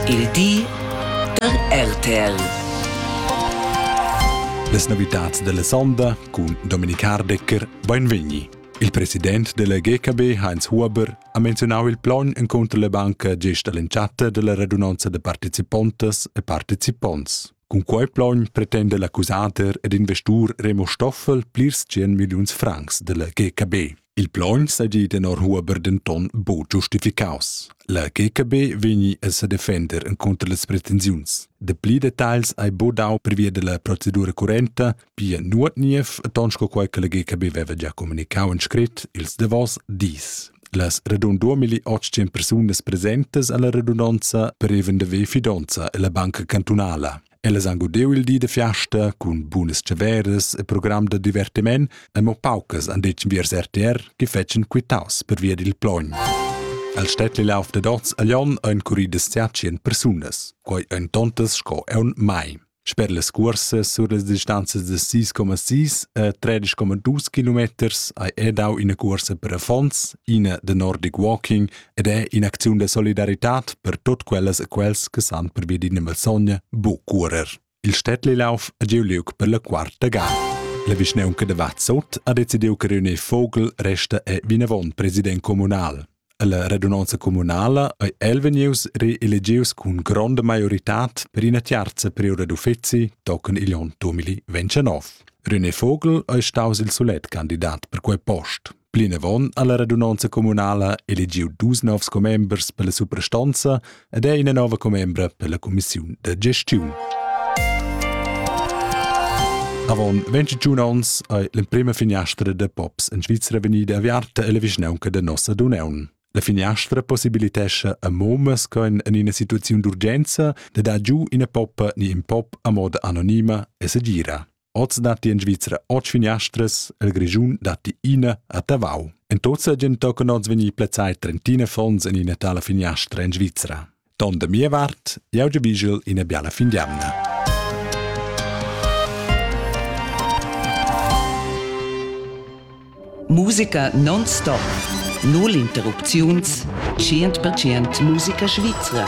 Il di da RTL. Las novitads della sonda cun Dominik Hardecker Beinvegni. Il president della GKB Heinz Huber ha menzionau il plogn encontro la banca gest all'entschatta della radunanza de participontas e participonts. Cun quei plogn pretenda l'accusader ed investur Remo Stoffel plirs 100 milliuns francs della GKB. Il plogn seigi tenor Huber denton buc giustificaus. La GKB vegni a sedefender incontro las pretensiuns. De pli detagls ei budau pervia della procedura currenta Pia nuot niev, ton sco quai che la GKB veva già comunicau en scrit ils davos dis. Las radun 2800 persunas presentes alla redundanza preven de ve fidonza e la banca cantunala. Ellas han godeu il di de fiasta cun bunas ceveres e program de divertiment e mo paucas han detg viers RTR che fetschen quitaus per via dil plogn. Al städtli lauf de dots a Lyon ein curridas 100 persunas, quai ein tontas sco eun mai. Sper las cuorsas sur las distanzas da 6,6 e 13,2 kilometers hai er dau ina cuorsa per affons, ina da Nordic Walking ed è in'acziun da solidaritat per tut quellas e quels che san per via d'ina malsogna bu cuorer. Il Städtlilauf è giu liug per la quarta gada. La vischnaunca da Vazzot ha decidiu che reunir Vogel resta è vinavon president communal. Alla radunonza communala ei el vegnius reelegius cun gronda maioritad per ina tiarza periode d'uffeci tochen igl onn 2029. René Vogel ei staus il solet candidat per quei post. Plinavon ha la radunonza communala eligiu dus novs commembers per la suprastonza ed è ina nova commembra per la cumissiun da gestiun. Avon 21 ons ei l'emprema finiastra da pops in Svizzera vegnida aviarta ella vischnaunca da nossa Duneun. La finiastra possibilitescha a momas con in ina situaziun d'urgenza de dar giu ina poppa ni in pop a moda anonima e segira. Oz datti in Svizra otg finiastras, el Grischun datti ina a Tavau. En tuzza gen tocan oz vegnir plazzai trentina fons en ina tala finiastra en Svizra. Ton da mia vart, jau giavigel ina biala fin d'jamna. Musica non-stop. Null interrupziuns. 100% musica svizra.